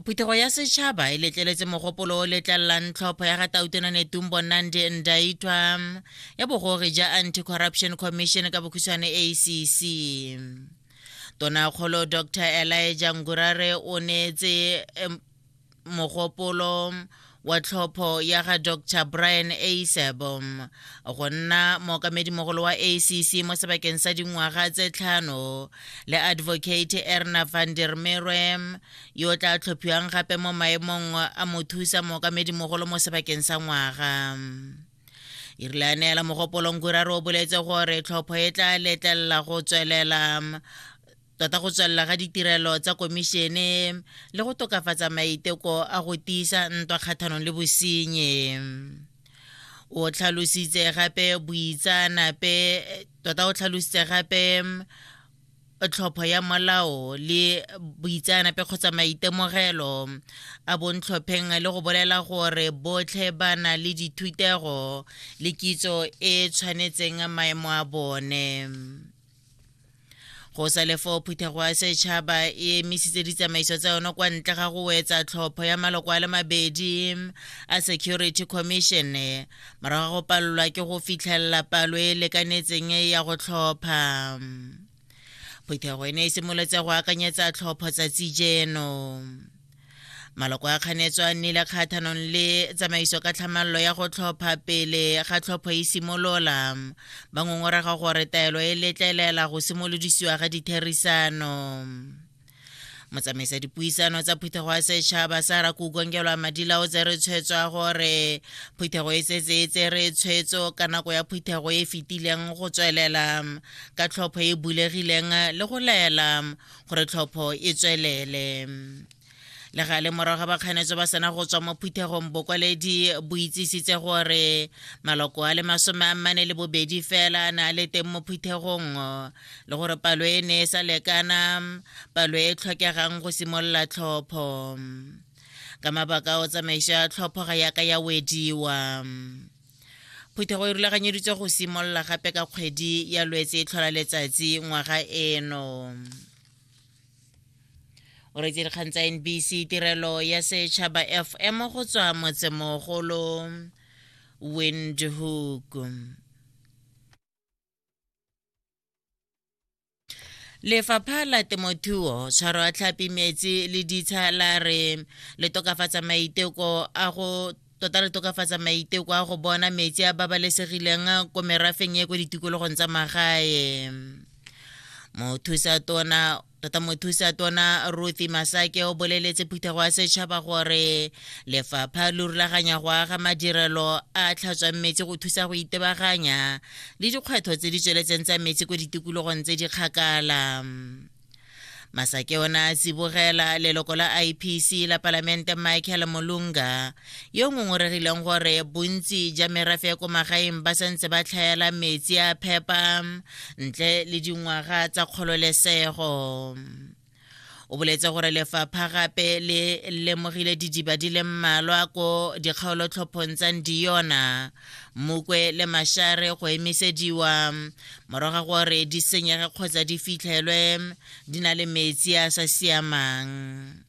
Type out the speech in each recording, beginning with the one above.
phuthego ya setšhaba e letleletse mogopolo o letlelelang tlhopho ya ga tautona netumbo nandi ndaitwa ya bogore ja anti-corruption commission ka bokhutshwane acc tonakgolo dr elijah ngurare o neetse mogopolo wa tlhopho ya ga dr brian asebo go nna mookamedimogolo wa acc mo sebakeng sa dingwaga tse tlhano le advocate erna van der merwe yo o tla tlhophiwang gape mo maemong a mothusa mookamedimogolo mo sebakeng sa ngwaga e rile a neela mogopolong kuraro o boletse gore tlhopho e tla letlelela go tswelela tota go tswelela ga ditirelo tsa komišene le go tokafatsa maiteko a go tiisa ntwa kgathanong le bosenye o tlhalositse gape boitsaanape tota o tlhalositse gape tlhopho ya molao le boitseanape kgotsa maitemogelo a bontlhopheng le go bolela gore botlhe ba na le dithutego le kitso e tshwanetseng maemo a bone go sa le foo phuthego ya setšhaba e emisitse ditsamaiso tsa yone kwa ntle ga go wetsa tlhopho ya maloko a le mabedi a security commission morago ga go palelwa ke go fitlhelela palo e e lekanetseng ya go tlhopha phuthego e ne e simolotse go akanyetsa tlhopho tsatsi jeno maloko a kganetso a nnile kgathanong le tsamaiso ka tlhamallo ya go tlhopha pele ga tlhopho e simolola ba ngongorega gore taelo e letlelela go simolodisiwa ga ditherisano motsamaisa dipuisano tsa phuthego ya setšhaba sa rakukongelwa madila o tsere tshwetso ya gore phuthego e setse e tsere tshwetso ka nako ya phuthego e fetileng go tswelela ka tlhopho e bulegileng le go laela gore tlhopho e tswelele le ga le morago ga bakganetso ba sena go tswa mo phuthegong bokwaledi bo itsisitse gore maloko a le masome a mmane le bobedi fela na le teng mo phuthegong le gore palo e ne e sa lekana palo e tlhokegang go simolola tlhopho ka mabaka o tsamaiso ya tlhopho ga yaka ya wediwa phuthego e rulaganyeditswe go simolola gape ka kgwedi ya lwetse e tlhola letsatsi ngwaga eno o retse dikgang tsa nbc tirelo ya setšhaba fm go tswa motsemogolo windhoek lefapha la temothuo tshwaro a tlhapi metsi le ditsha la re le tokafatsa maiteko a go tota re tokafatsa maiteko a go bona metsi a babalesegileng ko merafeng e ko ditikologong tsa magae mothusa tona tota mothusa tona ruthy masake o boleletse phuthego ya setšhaba gore lefapha lo rulaganya go aga madirelo a tlhatswang metsi go thusa go itebaganya le dikgwetlho tse di tsweletseng tsa metsi ko ditikologong tse di kgakala masake ona a tsibogela leloko la ipc la palamente michael molunga yo ngongoregileng gore bontsi ja merafe ya ko magaeng ba santse ba tlhaela metsi a phepa ntle le dingwaga tsa kgololesego o boletse gore lefapha gape le lemogile didiba di le mmalwa ko dikgaolotlhophong tsa ndiyona mokwe le mashare go emisediwa morago gore di senyege kgotsa di fitlhelwe di na le metsi a sa siamang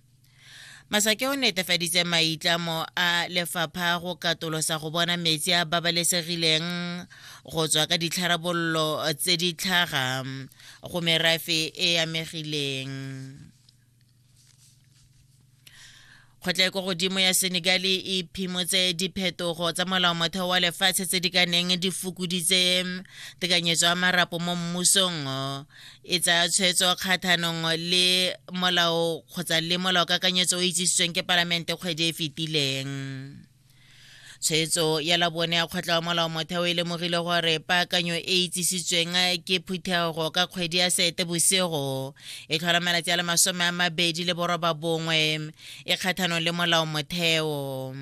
masake o netefaditse maitlamo a lefapha go katolosa go bona metsi a babalesegileng go tswa ka ditlharabololo tse di tlhaga go merafe e amegileng kgotla ko godimo ya senegal e phimotse diphetogo tsa molao motheo wa lefatshe tse di ka neng di fokoditse tekanyetso ya marapo mo mmusong e tsaya tshwetso kgathanong le molao kgotsa le molao kakanyetso o itsisitsweng ke palamente kgwedi e fetileng tshwetso ya labone ya kgotla wa molao motheo e lemogile gore paakanyo e itsisitsweng ke phuthego ka kgwedi ya sete bosigo e tlhola malatsi a le masome a mabedi le boroba bongwe e kgathanong le molao motheo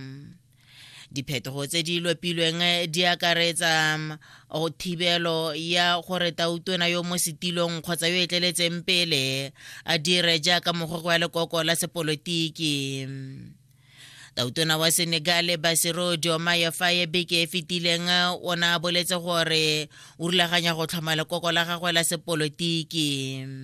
Diphetogo tse di lopilweng eh, di akaretsa mm, go thibelo ya gore tautona yo mo setilong kgotsa yo e tleletseng pele a dire jaaka mogwego wa lekoko la sepolotiki tautona wa senegale basiro diomaye faye beke e fetileng eh, o ne a boletse gore o rulaganya go tlhoma lekoko la gagwe la sepolotiki